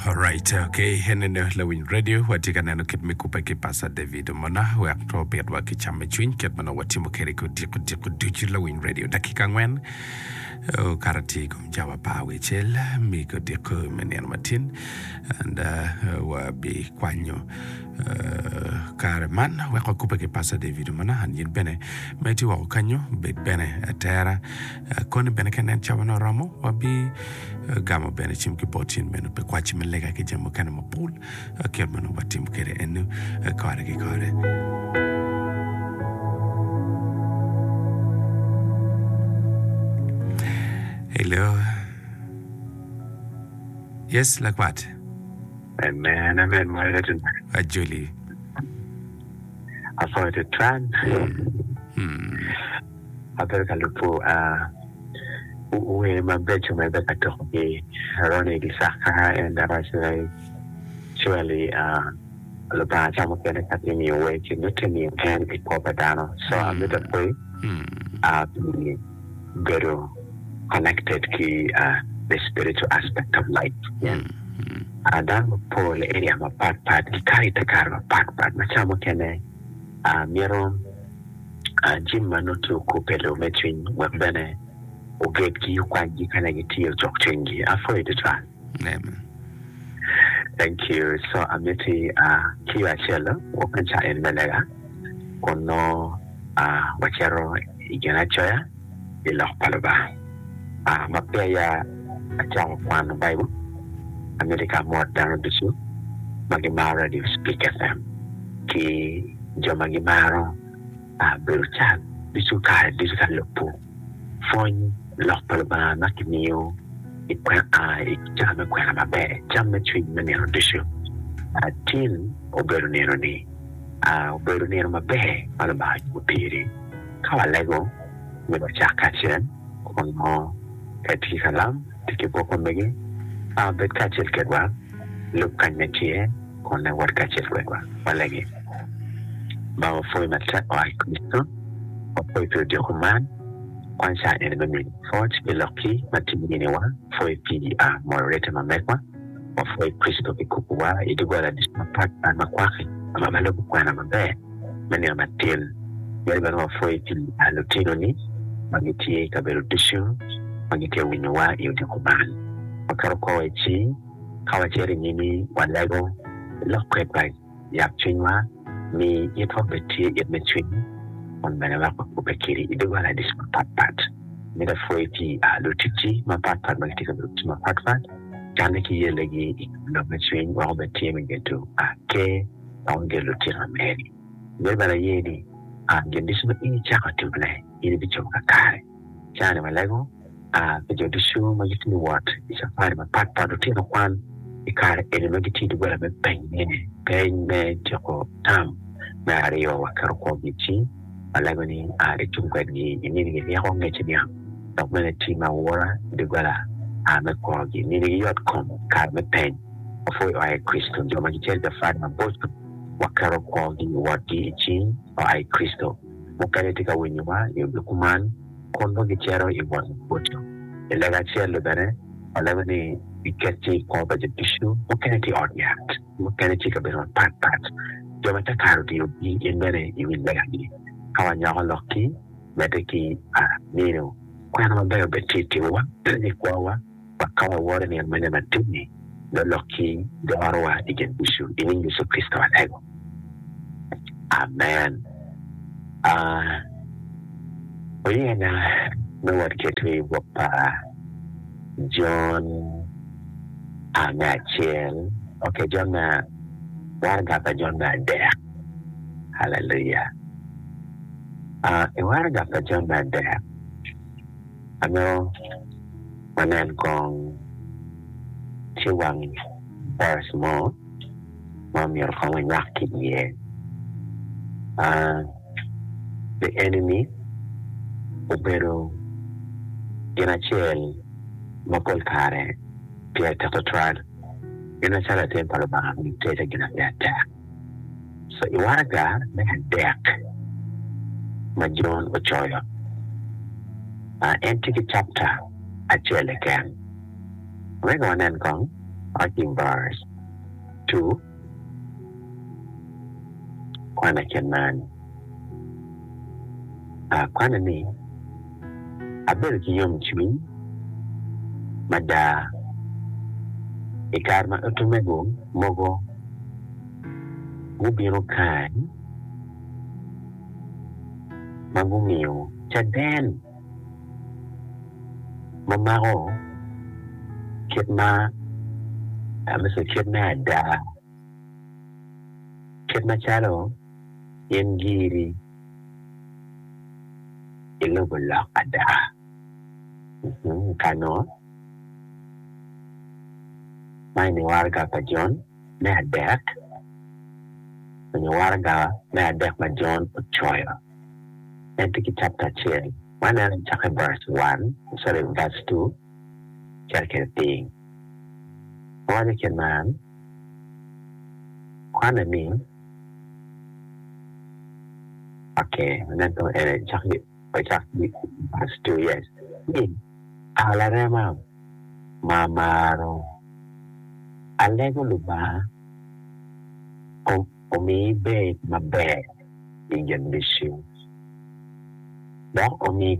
Alright, okay. En ene lawiny radio watye ka neno kit me kubbe ki Pastor David Omona wek to obitwa ki cam me cwiny kit ma nongo watimo kwede ki odiko diko ducu lawiny radio dakika angwen okato tye i kom cawa apar wecel me odiko me nino matin and uh, wabikwanyo uh, kare man wek wakubbe ki Pastor David Omona and yin bene ma itye woko kanyo bed bene atera Koni bene ka nen cawane oromo, wabigamo bene cim ki bot cen meno pi kwaci me lega ki jami mukene mapol ki yot ma nongo watimo kwede eno kore ki kore. Hello. Yes, lakwat. Amen, amen, mwere tena. Ajoli. Afoyo te tran. Hmm. ma bedo ka lubo wer mabeco ma ibedo ka tuko ki aroni ki caka en dok actually Lubanga ca mukene ka tye miyo wer ci nongo tye miyo en i kwo pa dano so amito apoi pi bedo connected ki the spiritual aspect of life pien dano mapol i area mapat pat gikato i te kare mapat pat ma ca mukene myero A Jim ma nongo tye okub pi lur me cwiny wek bene ogedgi, okwanygi ka nongo gitye ocok cwinygi. Apwoyo tutwal. Thank you so amiti kiyo acel wok me caen me lega kun nongo wacito i ginacoya. pi Lok pa Lubanga. Ma peya acako kwano Baibul, amito ka amot dano ducu ma gimaro Radio Speak FM ki jo ma gimaro bedo cat ducu kare ducu ka lubo pwony Lok pa Lubanga ma kimiyo i cawa me kwena maber, cam me cwiny me nino ducu. Tin obedo nino-ni, obedo nino maber ma Lubanga ocubo piri. Ka walego, myero wacak kacel. Kwong mo ka itye ki kalam, ti ki buk omege, a wabed kacel kedwa. Lub kany ma itye, kun ne wot kacel kwedwa. Walege. Ba, wapwoyi matek oa i Kricito. Wapwoyi pi odyoko man. Kwany cawa eni me miyo lok pwoc pi lokki ma tye i niniwa. Pwoyi pi a moyo rette ma megwa. Wapwoyo Kricito pi kubowa i doggola ducu mapat pat ma kwaki ma ma lubo kwena maber me nino matin. Myero bene wapwoye pi a lutinoni ma gitye i kabedo ducu ma gitye ka winyowa i odiko man. Waketo kor wa i cing ka wacito i nyimi walego lok kwedwa. Yak cwinywa, mi itwa obed tye it me cwiny, kun bene wek wakobbe kedi i doggola ducu mapat pat. Mita pwoyi ki i aa luticci mapat pat ma gitye ka bedo ducu mapat pat, canne ki yellegi i kom lok me cwiny wek obed tye me gedo aa ker wek wager lutikna meri. Myero bene aye ni aa gin ducu ma in icako timone in ibicobo kakare. Jami malego a pi jo ducu ma gitye ka wot i cafari mapat pat. Lutino kwan i kare eni ma gitye i doggola me penyone ni peny me tyeko tam me aryo wa keto kwogi i cing ma lego ni a icung kwedgi i mini gi ryeko ngece niang dok bene tii ma wora i doggola a me kwogi mini gi yot kom i kare me peny ma pwoi oa i Kricito. Jo ma gicito i cafari maboco wa keto kwogi wotgi i cing oa i Kricito. mukene tye ka winyowa i yo me kuman kun nongo gicito i wot maboco. I lega acel-li bene, walego ni giket cing i kwo pa jo ducu, mukene tye i ot yat, mukene tye i kabedo mapatpat. Jo ma Cakar otiyo gin bene i wi legagi. Ka wanyoko lokki, medde ki pa nino, kwena mabeco bene tye i timowa me kwowa. Dok ka waworo nino mene madit-ni, lolok ki dorowa i gen ducu i nying Yecu Kricito atego. Amen. A Oyena me wot keto i bwok pa Jon a me acel, ok, Jon me waraga pa Jon me adek. Haleluya! A I waraga pa Jon me adek. Amito wanen kong ci wang verse mo ma omyero kong wanywak ki iye, The enemy obedo gin acel ma pol kare tye ateko twal. Gin acel atir pa Lubanga ma gitedo gin atektek. I waraga me adek ma Jon ocoyo, en tye ki capta acel keken. Wek wanen kong Arching Bars ii, Kwan acel man, kwane ni. abedo ki yomcwiny mada i kare ma utmego mogo gubino kany ma gumiyo caden ma mako kit ma amito kit me ada, kit macalo in giri. i lobo lok ada. Kano ma i ni waraga pa Jon me adek, i ni waraga me adek ma Jon ocoyo, en tye ki capita acel. Waneno i cake verse one, sorry verse two cito kede piny. Awaco kene man, kwane ni. Oke, ento en ecaki ocak giki past two years ni a larema ma amaro, alego Lubanga kong omi ibed maber i gen mission dok omi.